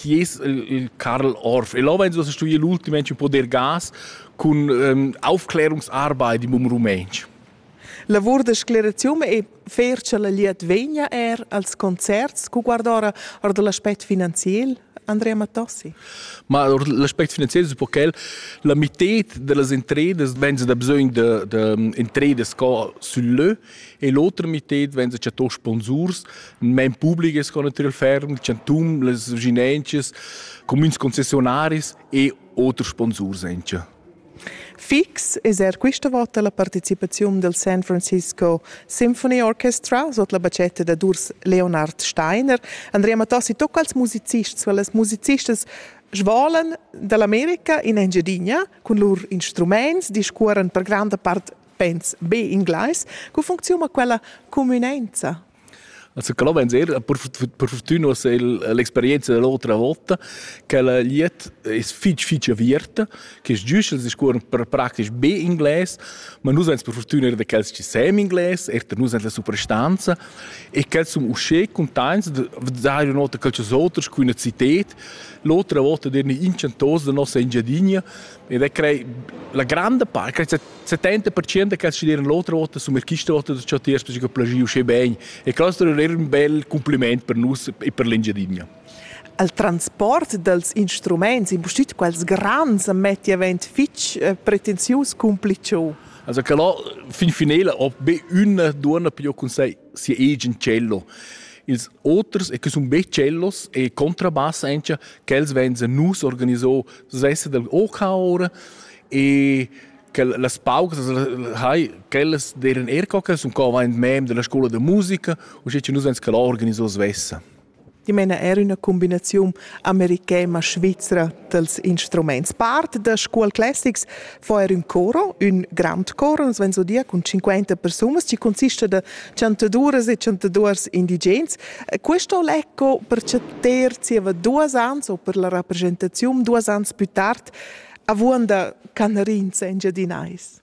chi es il Karl Orff. El ho insomma studi l'ultimamente poder gas cun ähm, Aufklärungsarbeit im Rumänsch. Lavur da sclerazium e fer cha la liet vegna er als concerts cu guardora or da l'aspect finanziel Andrea Mattossi. Ma l'aspect finanziel es un po quel, la mitted da las entredas venza da bisögn da, da mm, entredas sco sul lö, E l'oter mited vegn da tò sponsurs, men publiches con natürlich ferm, chantum, les vinences, comüns concessionaris e oter sponsurs encha. Fix es er quista vota la partecipaziun del San Francisco Symphony Orchestra sot la bacetta da Durs Leonard Steiner. Andrea Matassi, tocca als musicists, weil les musicists svolan dall'America in Engiadina cun lur instruments, discuoran per granda part pens be inglais, co funcziuna quella cumünenza? Also quello vens er per, per fortuna se l'experienza dell'altra volta che la liet es fitch fitch aviert che es giusto es scuon per praktisch be inglés ma nus ans per fortuna er de quels che sem inglés er de nus la superstanza e quels sum usche contents de dire nota quels outers cu una città l'altra volta der ni inchantos de nossa Engiadinha ed è crei la grande parte 70% che studieren l'otra vota sono questa vota da ciò tiers perché plagiu sche bene e questo è un bel complimento per noi e per l'Engiadinha al transport dels instruments, impustit quels grans, metti avent fitch eh, pretensius cumpliciu. Also che là, fin finale, ob be una donna più con sei siaegen cello. Ils oters, e che sono be cellos e contrabassa anche, che els venzen nus organizò, das heißt der OK ora, e che las paucas hai quellas deren er coca sun co vain mem della scuola de musica u sche nus vens che la organiso svessa Ti meina er üna combinaziun americana svizra dels instruments. Part da Scuol Classics fa er un coro, un grand coro, uns ven so dir cun 50 persunas, ci consista da chantaduras e chantaduors indigens. Questo lecco per ter zieva duas ans o per la rappresentazione duas ans più tard avuonda canarins engiadinais?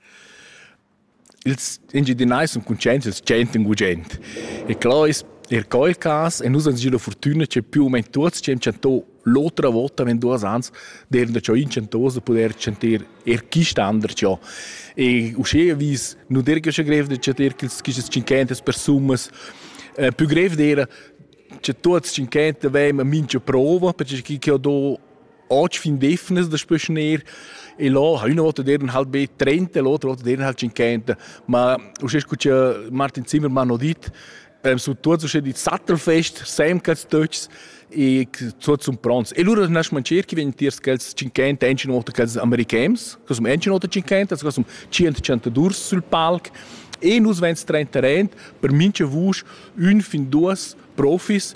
Ils engiadinais sun cuntscients dal tschient in gugent. E clò es er quel cas e nus ans gio la furtüna che più u meno tuots ci han chanto l'otra vota in duos ans d'eran da ciò inchantos da pudair chanter er quist an da ciò. E uschè vis nu der che grev da chanter quistas cinquentas persunas. Eh, più grev d'era che tuots cinquenta avevan mincha prova, perché chi che ho do oggi fin defnes das beschner e lo ha una volta der halt be trenta e l'altra volta der halt cinquanta ma usche scuccia Martin Zimmermann ho dit prem su tuots usche dit Sattelfest semcats töchs e tuots sun pronts e lura nas mancher chi vegn tiers quels 50 enchina volta quels americans che sum enchina volta 50 che sum 100 sul palc e nus vens 30 rent per mincha vusch un fin duas profis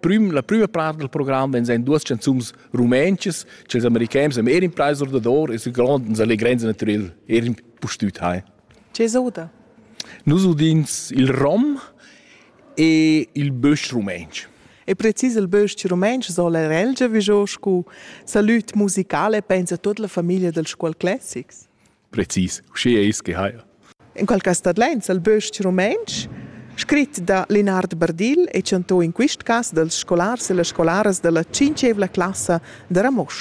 Prüm, la prüma part del program vegn ein duas canzuns rumentschas ch'ils americans am Ehrenpreis ordador e su grond uns allegrens naturel Ehren pustüt hai. Che soda? Nus udins il rom e il bösch rumensch. E precis il bösch rumensch sola relgia vigiò scu salut musicale pensa tut la famiglia dels scuol classics. precis uschè eis che haja. En quel cas tadlains el bös-ch rumantsch, scrit da Lenard Bardill e chantò in quist cas dals scolars e las scolaras da la tschinchevla classa da Ramosch.